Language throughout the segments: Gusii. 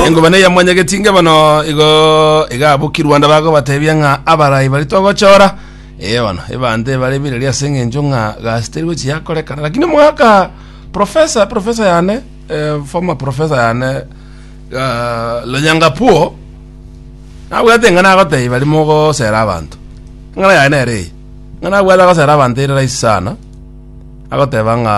engobana ya mwanyagetinga bono igo igabuki rwanda bagobatebia ng'a abarai bari togochora eh bono ebante bare bireri ase eng'encho ng'a gasi teri gochi yakorekana lakini omwaka profesa profesa yane eh, former profesa yane uh, lonyangapuo nabwate ng'a nagotebia bari mogosera abanto ng'ana yaye nere eye ng'a nabwate agosera abanto ere rahisi sana agoteba ng'a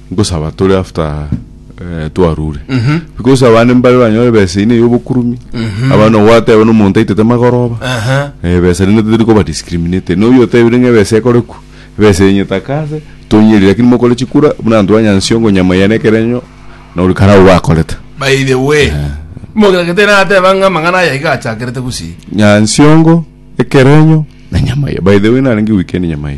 Nkosaba tore after eh, twarure because abande mbare banyore ebesa eyio neye obokurumi aba no gwateba no omonto aitete magoroba Aha. Eh, ebesa rende totari koba discriminate noyo otebire ng'a ebesa ekorekwa ebesa yenye takase tonyeri lakini mokore chikura buna abanto ba nyansiongo nyama ya nekerenyo na ori karao bakorete by the way mogagete nateba ng'a amang'ana aya iga achakerete gusii nyansiongo ekerenyo na nyama ya by the way narenge weekend nyama ya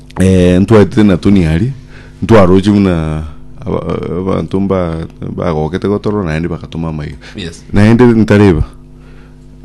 Eh, ntwaetete na Tony aria, ntwaroche buna aba- abanto mba- bagokete gotorora naende bagatoma amaiga. Yes. Naende ntareba,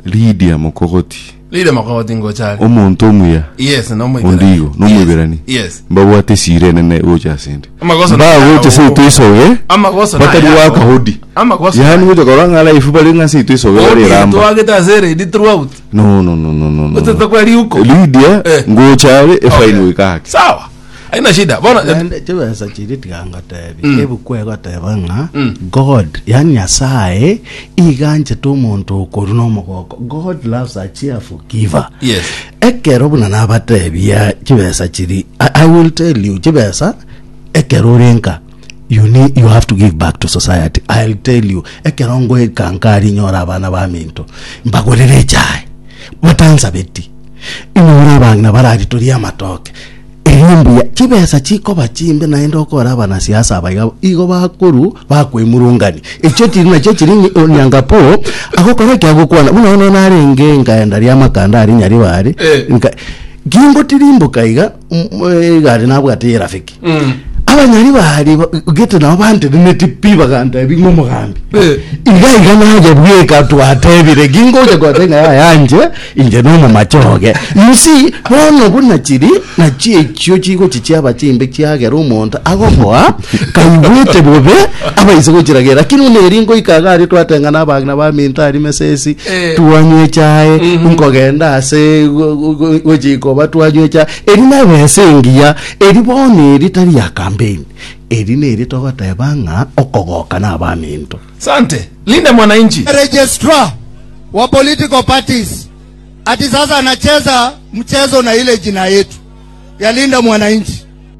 Lydia Mokogoti, Lile makoti ngochari. omonto omuya, Yes, no mo onde igo, no moiberani. Yes. Mbabwate esira enene gocha asende. Amagoso Mbagocha nayago. seito isoge, Amagoso batari nayago. wakahodi. Amagoso Yaani nayago. gocha korwa ng'a life bare ng'a seito isoge bare Odio eramba. twagete ase eredi throughout. No, no, no, no, no, no. Bete takwa riuko. Lydia, Eh. ngocha are Okay. efaino ikake. Sawa. Haina shida. Bono Naende chibesa chiria tiga ngotebi ebuku egoteba ng'a god yani nyasaye iganchete omonto okoru nomogoko god loves a cheerful giver Yes. ekero buna nabatebia chibesa chiri I, i will tell you chibesa ekero orenka You need, you have to give back to society. I'll tell you, ekero ngoika nkari nyora abana ba minto, mbagorere echae, batansabeti. Inyora abang'ina barari toria amatoke. Erio mbuya, chibesa chikoba chimbe naende okora abana siasa abaiga igo bakoru bakwemurungani. Echio chiri nachio chiri nyi- onyangapo, agokora ekiagokwana. Buna bono narenge nkaenda ria makanda ari nyaribare, Eh. nka- kingotirimboka iga mm, eh, igare nabwate yerafiki Mm. abanyari bari ba- gete nabo bantenemeti pi bagantebi ng'omogambi Eh. iga iga naje bweka twatebire gingoja gwatenga yayanje inje nomomachoge musi bono buna chiri nachio echio chigo chichiaba chimbe chiagera omonto agoboa Kaigwete bobe abaise gochiragera lakini buna eri ngoika iga aria twateng'ana abagina ba minto aria mesesi Eh. twanywa echae nkogenda ase go- go- go- gochikoba twanywa echae eri nebesa engiya eri bono eri tari ya campaign eri neri togoteba ng'a okogoka na abaminto Sante. Linde mwananchi. registrar wa political parties ati sasa anacheza mchezo na ile jina yetu ya Linda Mwananchi.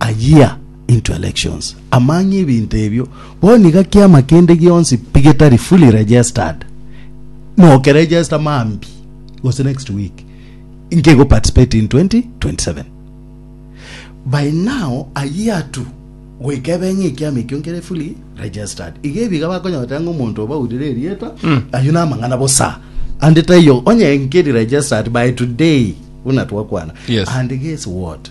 a year into elections, amang'e ebinto ebio bono iga kiama kende gionsi pi getari fully registered noke register mambi gose next week nke go participate in 2027 by now a year to goika ebe ng'a ekiama ekio nkere fully registered iga ebi iga bakonyotera ng'a omonto obaurire erieta ayio namang'ana bosa ande taiyo onye nkeri registered by today buna twakwana Yes. and guess what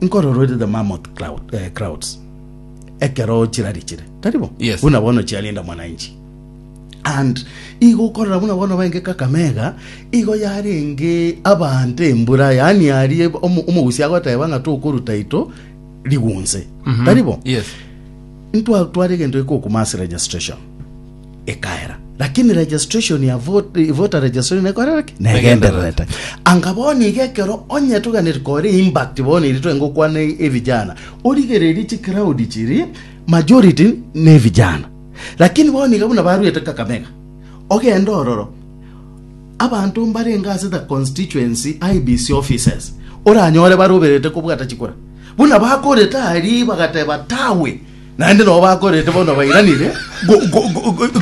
Nkororere the mammoth cloud, eh, crowds ekero chirari chire tari bo Yes. buna bono chiarinda mwananchi and igo okorora buna bono baenge kakamega igo yarenge abante embura yani arie omo- omogusi agoteba ng'a tokoruta ito rigunse tari bo Yes. ntwatwara egento ekokuma ase registration ekaera. Lakini registration ya vote, voter registration nekorera ki? Negendererete. Anga bono iga ekero onye toganire kore impact bono iri twenge okwana evijana, origererie chi crowd chiri majority ne vijana. Lakini bono iga buna baruete Kakamega, ogende ororo abanto mbarenge ase the constituency IBC offices oranyore baroberete kobwata chikura buna bakorete aria bagateba tawe Naende nabo bakorete bono bairanire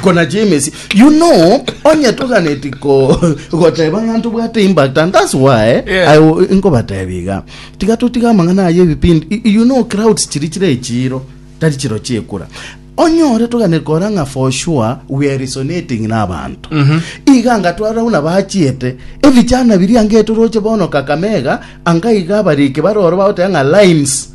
konachia emesi. You know, onye toganeti ko goteba ng'a ntobwate impact and that's why yeah. I nkobatebia iga. Tiga totiga amang'ana aye ebipindi. You know crowds chiri chire echiro tari chiro chiekura onyore togane kora ng'a for sure we are resonating na abantu mm -hmm. iga nga twara una bachiete ebichana biri ange toroche bono kakamega anga iga bariki baroro baote ng'a limes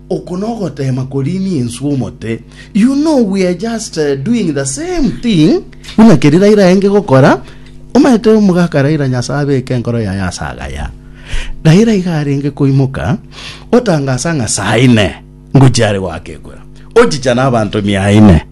Oko nogoteema koriini enswe omote, you know we are just doing the same thing buna keria Raila aenge gokora, omanyete omogaka Raila Nyasae abeke enkoro yaye ase agaya. Raila iga arenge koimoka otangasa ng'a saa ine ngochia are goaka ekwera, ochicha na abanto mia ine.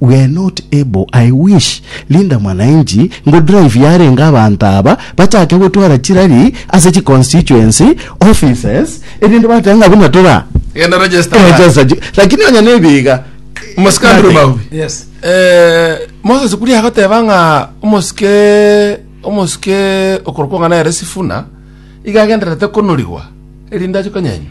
We're not able, I wish Linda Mwananchi ngo drive yarenge abanto aba bachake gotwara chirari ase chi constituency offices erinde bateba ng'a buna tora Genda register line. register chi lakini onye nebi iga Omosike Andrew nothing. Maubi. Yes. Eh, Moses Kuria agoteba ng'a omosike omosike okorokwa ng'a nere Sifuna iga agendererete konorigwa erinde ache konyenywa.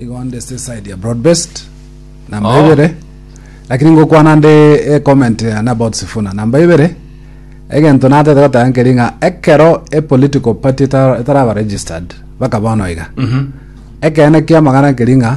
Igo nde se side ya broad based namba oh. ibere lakini ngokwana nde e eh, comment ya na about sifuna namba ibere egento natete gotanga nkeri ng'a ekero e political party etaraba registered baka bono iga mm -hmm. ekene kia magana nkeri ng'a